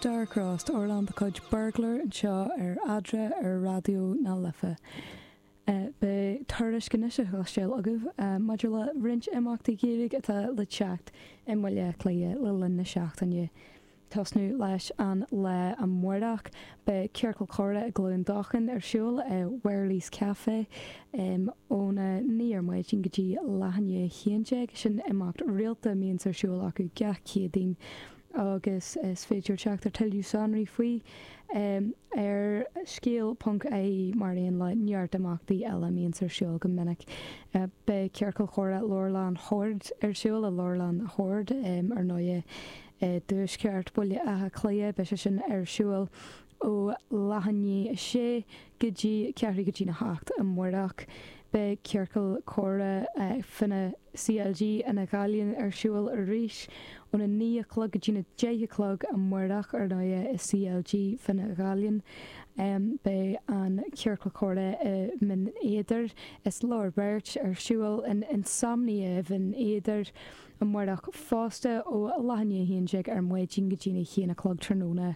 Dark Roast, amhrán de chuid Burglar anseo ar Eadra ar Raidió na Life. Beidh tuairisc anois a chloisteáil agaibh maidir le roinnt imeachtaí Gaeilge atá le teacht i mBaile Átha Cliath le linn na seachtaine. Tosnú leis an lá amáireach, beidh Ciorcal Comhrá i gCluain Dolcáin ar siúl i Wherley's Café óna naoi ar maidin go dtí leath i ndiaidh a haon déag. Sin imeacht rialta a mbíonns ar siúl acu gach Céadaoin. agus is féidir teacht ar tuilleadh sonraí faoi ar scéal.ie, mar aon le neart imeachtaí eile a mbíonns ar siúl go minic. Beidh Ciorcal Comhrá Leabharlann Shoird ar siúl i Leabharlann Shoird, ar ndóigh, i dtuaisceart Bhaile Átha Cliath. Beidh sé sin ar siúl ó leath i ndiaidh 6 go dtí ceathrú go dtí na 8 amáireach. Beidh ciorcal comhrá Fine CLG Fhine Ghallainn ar siúl arís ón 9 a chlog go dtí na 10 a chlog amáireach ar ndóighe i CLG Fhine Ghallainn. Beidh an ciorcal comhrá i mBinn Éadair is Lár Beirt ar siúl in Insomnia i mBinn Éadair. Amárach fosta, ó leath i ndiaidh a haon déag ar maidin go dtí na haon a chlog tráthnóna,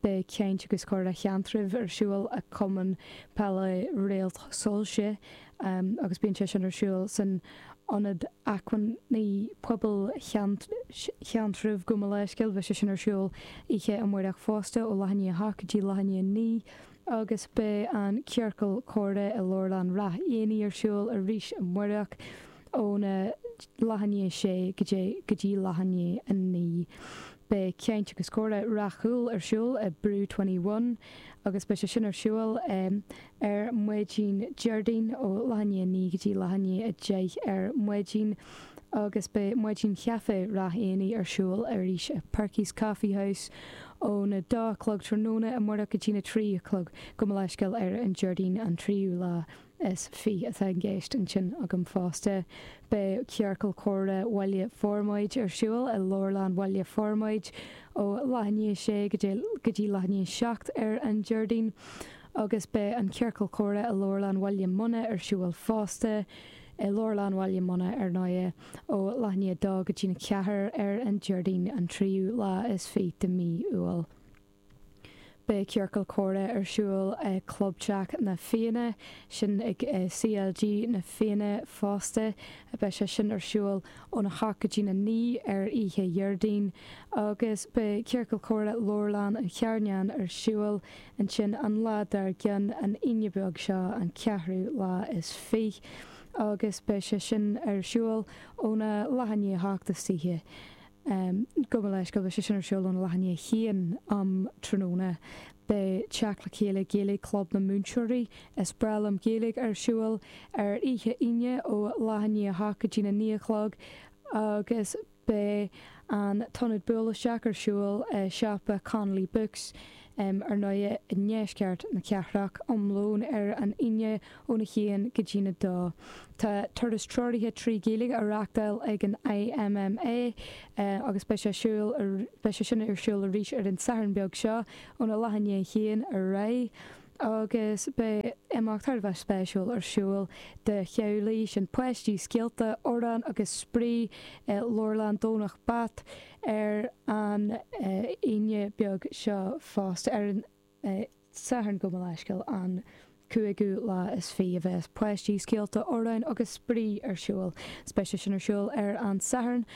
beidh Caint agus Comhrá Sheantraibh ar siúl ag Cumann Peile Réalt Soilse agus bíonn sé sin ar siúl san Ionad Acmhainní Pobail Sheantraibh, gabh mo leithscéal. Beidh sé sin ar siúl oíche amárach fosta, ó leath i ndiaidh a hocht go dtí leath i ndiaidh a naoi. agus beidh an ciorcal comhrá i Leabharlann Ráth Eanaigh ar siúl arís amáireach óna leath i ndiaidh a sé go dtí go dtí leath i ndiaidh a naoi. Beidh Caint agus Comhrá Ráth Cúil ar siúl i Brew Twenty One agus beidh sé sin ar siúl ar maidin Déardaoin ó leath i ndiaidh a naoi go dtí leath i ndiaidh a deich ar maidin. agus beidh Maidin Chaifé Ráth Eanaigh ar siúl arís i Perky's Coffee House óna dó a chlog tráthnóna amárach go dtí na trí a chlog. Gabh mo leithscéal ar an Déardaoin an tríú lá is fiche atá i gceist ansin agam fosta. Beidh Ciorcal Comhrá Bhaile Formaid ar siúl i Leabharlann Bhaile Formaid ó leath i ndiaidh a sé go dtí leath i ndiaidh a seacht ar an Déardaoin agus beidh an Ciorcal Comhrá i Leabharlann Bhaile Munna ar siúl fosta i Leabharlann Bhaile Munna ar ndóighe, ó leath i ndiaidh a dó go dtí na ceathair ar an Déardaoin an tríú lá is fiche de mhí Iúil. Beidh Ciorcal Comhrá ar siúl i gClubteach Na Fianna, sin ag CLG Na Fianna fosta, beidh sé sin ar siúl óna hocht go dtí na naoi ar oíche Dhéardaoin, agus beidh Ciorcal Comhrá Leabharlann an Charnáin ar siúl Ansin an lá dar gcionn, an Aoine beag seo, an ceathrú lá is fiche, agus beidh sé sin ar siúl óna leath i ndiaidh a hocht istoíche. Gabh mo leithscéal, beidh sé sin ar siúl óna leath i ndiaidh a haon um thráthnóna. Beidh Teacht le Chéile Gaeilge Club na Múinteoirí is Breá Liom Gaeilge ar siúl ar oíche Aoine ó leath i ndiaidh a hocht go dtína naoi a chlog agus Beidh an t-ionad buail isteach ar siúl i siopa Connolly Books, ar ndóighe, i ndeisceart na cathrach, um lón ar an Aoine óna haon go dtína dó. Tá turas treoraithe trí Ghaeilge á reachtáil ag an IMMA agus beidh sé siúl ar beidh sé sin ar siúl arís ar an Satharn beag seo, óna leath i ndiaidh a haon ar aghaidh. agus beidh imeacht thar a bheith spéisiúil ar siúl do theaghlaigh, sin páistí, scéalta, amhráin agus spraoi i Leabharlann Dhomhnach Bat ar an Aoine beag seo fosta. Ar an Satharn, gabh mo leithscéal, an cúigiú lá is fiche a bheas páistí, scéalta, amhráin agus spraoi ar siúl, beidh sé sin ar siúl ar an Satharn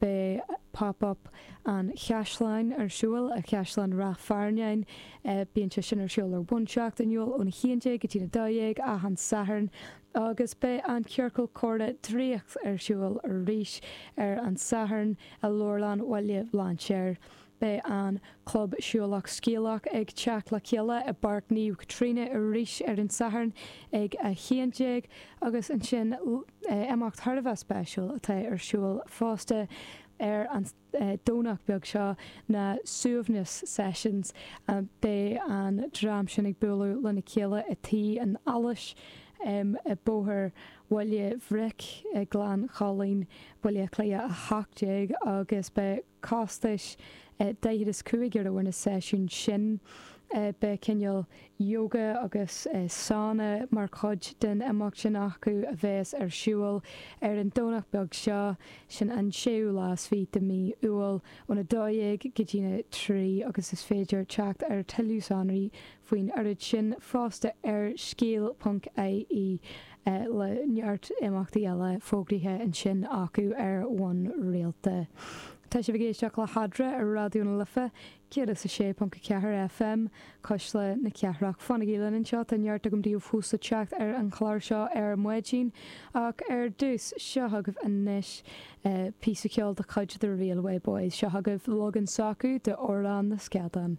Beidh Pop Up an Chaisleáin ar siúl i gCaisleán Ráth Fearnáin. Bíonn sé sin ar siúl ar bhonn seachtainiúil ón 11 go dtí an 12 achan Satharn agus beidh an Ciorcal Comhrá Draíocht ar siúl arís ar an Satharn i Leabharlann Bhaile Bhlainséir. Beidh an Club Siúlach Scéalach ag teacht le chéile i bPáirc Naomh Caitríona arís ar an Satharn ag 11:00 agus ansin imeacht thar a bheith spéisiúil atá ar siúl fosta ar an Domhnach beag seo, na Suaimhneas Sessions. Beidh an dream sin ag bualadh lena chéile i Tigh an Allais i Bóthar Bhaile Bhric, Gleann Chuilinn, Baile Átha Cliath 18 agus beidh. costas daichead is cúig euro ar na seisiúin sin. Beidh cineál yoga agus sauna mar chuid den imeacht sin acu a bheas ar siúl ar an Domhnach beag seo, sin an séú lá is fiche de mhí Iúil, ón 12 go dtína trí agus is féidir teacht ar tuilleadh sonraí faoin oiread sin fosta ar scéal ponc ie, le neart imeachtaí eile fógraithe ansin acu ar bhonn rialta. Tá sibh ag éisteacht le hAdhradh ar Raidió na Life 106.4 FM, Cuisle na Cathrach. Fanaigí linn anseo, tá neart agam daoibh fós le teacht ar an chlár seo ar maidin, ach ar dtús, seo chugaibh anois píosa ceoil de chuid The Railway Boys, seo chugaibh leagan s'acu d'Amhrán na Scadán.